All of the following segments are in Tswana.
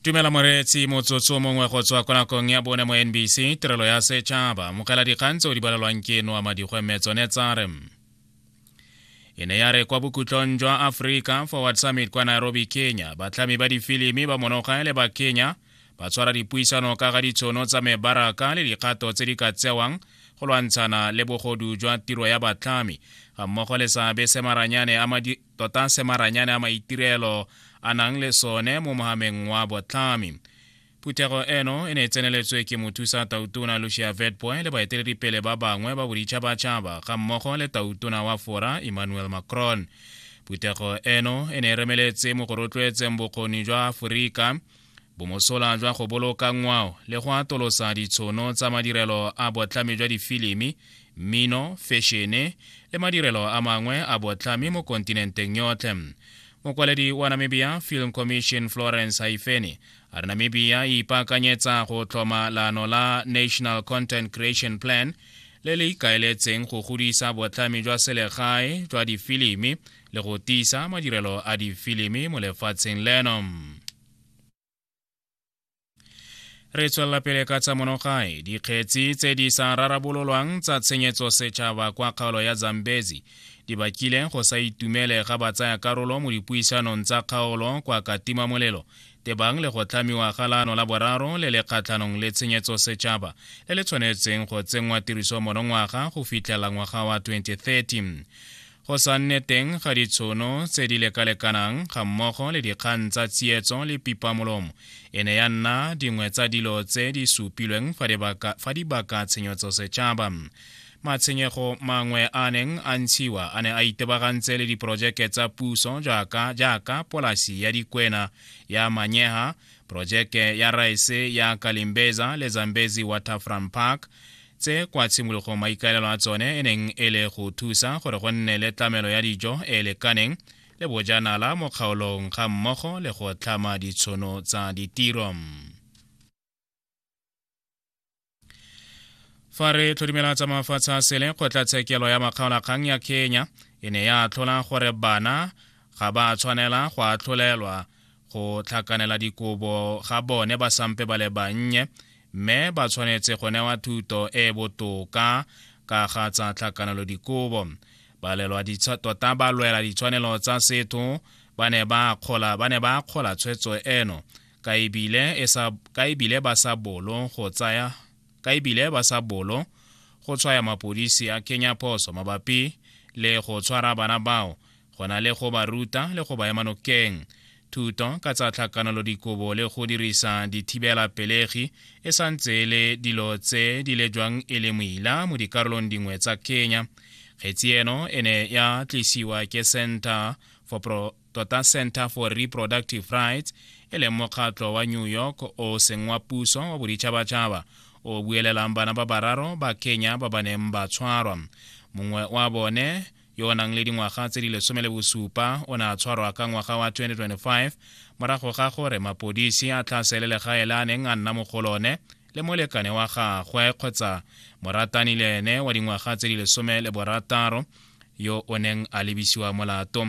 tumela moreetsi motsotso mongwe go tswa kwa nakong ya bone mo nbc tirelo ya setšhaba mogela dikgang tseo di balelwang ke noa madikgwe mme tsone tsa re e ne ya re kwa bokhutlong jwa aforika forward summit kwa nairobi kenya batlhami ba difilimi ba monoga le ba kenya ba tshwara dipuisano ka ga ditshono tsa mebaraka le dikgato tse di ka tsewang go lwantshana le bogodu jwa tiro ya batlhami ga mmogo le seabe se maranyane tota se maranyane a maitirelo a nang le sone mo mogameng wa botlhami phuthego eno e ne e tseneletswe ke mothusa tautona lucia vetboy le baeteledipele ba bangwe ba boditšhabatšhaba ga mmogo le tautona wa fora emmanuel macron phuthego eno e ne e remeletse mo go rotloetseng bokgoni jwa aforika bomosola jwa go boloka ngwao le go atolosa ditshono tsa madirelo a botlhami jwa difilimi mmino fešene le madirelo a mangwe a botlhami mo kontinenteng yotlhe mokwaledi wa namibia film commission florence haifeni a re namibia e ipaakanyetsa go tlhoma laano la national content creation plan le le ikaeletseng go godisa botlhami jwa selegae jwa difilimi le go tiisa madirelo a difilimi mo lefatsheng leno re tswelela pele ka tsa monogae dikgetsi tse di sa rarabololwang tsa tshenyetso setšhaba kwa kgaolo ya zambezi di bakile go sa itumele ga batsaya karolo mo dipuisanong tsa kgaolo kwa katima molelo tebang le go tlhamiwa ga laano la boraro le le kgatlhanong le tshenyetso setšhaba le le tshwanetseng go tsenngwa tiriso monongwaga go fitlhela ngwaga wa 2030 go sa nne teng ga ditshono tse di lekalekanang ga mmogo le dikgang tsa tsietso le pipamolomo e ne ya nna dingwe tsa dilo tse di supilweng fa dibaka tshenyotso setšhaba matshwenyego mangwe a neng a ntshiwa a ne a itebagantse le diporojeke tsa puso jaaka jaaka polasi ya dikwena ya manyeha porojeke ya raese ya kalimbeza le zambezi waterfront park tse kwa tshimologong maikaelelo a tsone e neng e le go thusa gore go nne le tlamelo ya dijo e lekaneng le bojanala mo kgaolong ga mmogo le go tlhama ditshono tsa ditiro fa re tlhodimela tsa mafatshe a sele kgotlatshekelo ya makgaolakgang ya kenya e ne ya atlhola gore bana ga ba tshwanela go atlholelwa go tlhakanela dikobo ga bone ba sampe ba le bannye mme ba tshwanetse go newa thuto e e botoka ka ga tsa tlhakanelo dikobo tota ba lwela ditshwanelo tsa setho ba ne ba akgola tshwetso eno ka ebile e ba sa bolo go tsaya ka ebile ba sa bolo go tshwaya mapodisi a kenya phoso mabapi le go tshwara bana bao go na le go ba ruta le go ba ema nokeng thuto ka tsa tlhakanolodikobo le go dirisa dithibela pelegi e sa ntse e le dilo tse di lejwang e le moila mo dikarolong dingwe tsa kenya kgetsi eno e ne ya tlisiwa ke center for, Pro, tota center for reproductive rights e leng mokgatlo wa new york o seng wa puso wa boditšhabatšhaba o buelelang bana ba bararo ba kenya ba ba neng ba tshwarwa mongwe wa bone yo o nang le dingwaga tse di lesome le bosupa o ne a tshwarwa ka ngwaga wa 2025 morago ga gore mapodisi a tlhasele legae le a neng a nna mo go lone le molekane wa gagwe kgotsa moratani le ene wa dingwaga tse di lesome le borataro yo o neng a lebisiwa molato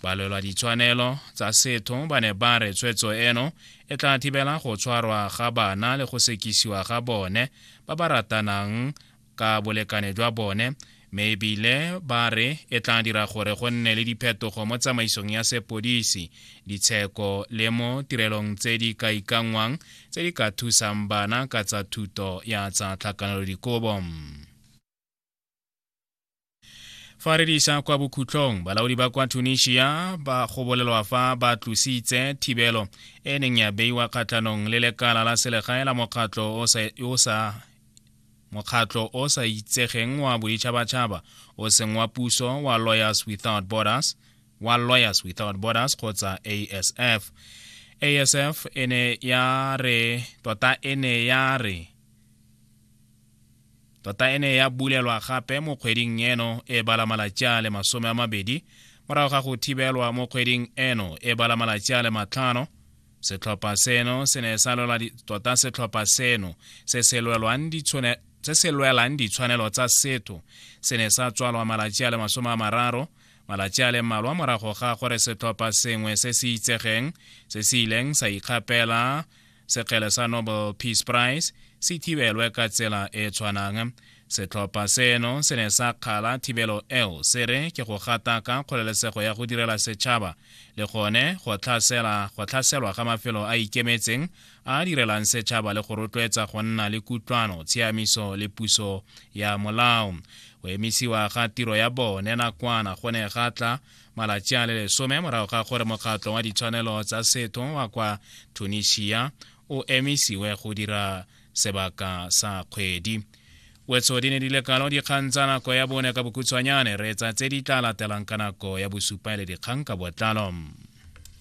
balwelwa ditshwanelo tsa setho ba ne ba re tshwetso eno e tla thibela go tshwarwa ga bana le go sekisiwa ga bone ba ba ratanang ka bolekane jwa bone mme ebile ba re e tla dira gore go nne le diphetogo mo tsamaisong ya sepodisi ditsheko le mo tirelong tse di ka ikanngwang tse di ka thusang bana ka tsa thuto ya tsa tlhakanelodikobo fa re disa kwa bokhutlong balaodi ba kwa tunisia ba go bolelwa fa ba tlositse thibelo e neng ya beiwa kgatlhanong le lekala la selegae la mokgatlho o sa mokgatlho o sa itsegeng wa boditšhabatšhaba o seng wa puso wa lawyers without borders wa lawyers without borders kgotsa asf asf e ne ya re tota e ne ya re Tota e ne ya bulelwa gape mo kgweding eno e bala malatsi a le masome a mabedi morago ga go thibelwa mo kgweding eno e bala malatsi a le matlhano setlhopha seno se ne sa lwela tota setlhopha seno se se lwelwang ditshone se se lwelang ditshwanelo tsa setho se ne sa tswalwa malatsi a le masome a mararo malatsi a le mmalwa morago ga gore setlhopha sengwe se se itsegeng se se ileng sa ikgapela sekgele sa nobel peace prize se thibelwe ka tsela e tshwanang setlhopha seno se ne sa kgala thibelo eo se re ke go gataka kgolelesego ya go direla setšhaba le gone go tlhaselwa ga mafelo a ikemetseng a direlang setšhaba le go rotloetsa go nna le kutlwano tshiamiso le puso ya molao go emisiwa ga tiro ya bone nakwana go ne ga tla malatsi a le lesome morago ga gore mokgatlo wa ditshwanelo tsa setho wa kwa tunisia o emisiwe go dira sebaka sa kgwedi wetso di ne di le kalo dikgang tsa nako ya bone ka bokhutshwanyane reetsa tse di tla latelang ka nako ya bosupa le dikgang ka botlalo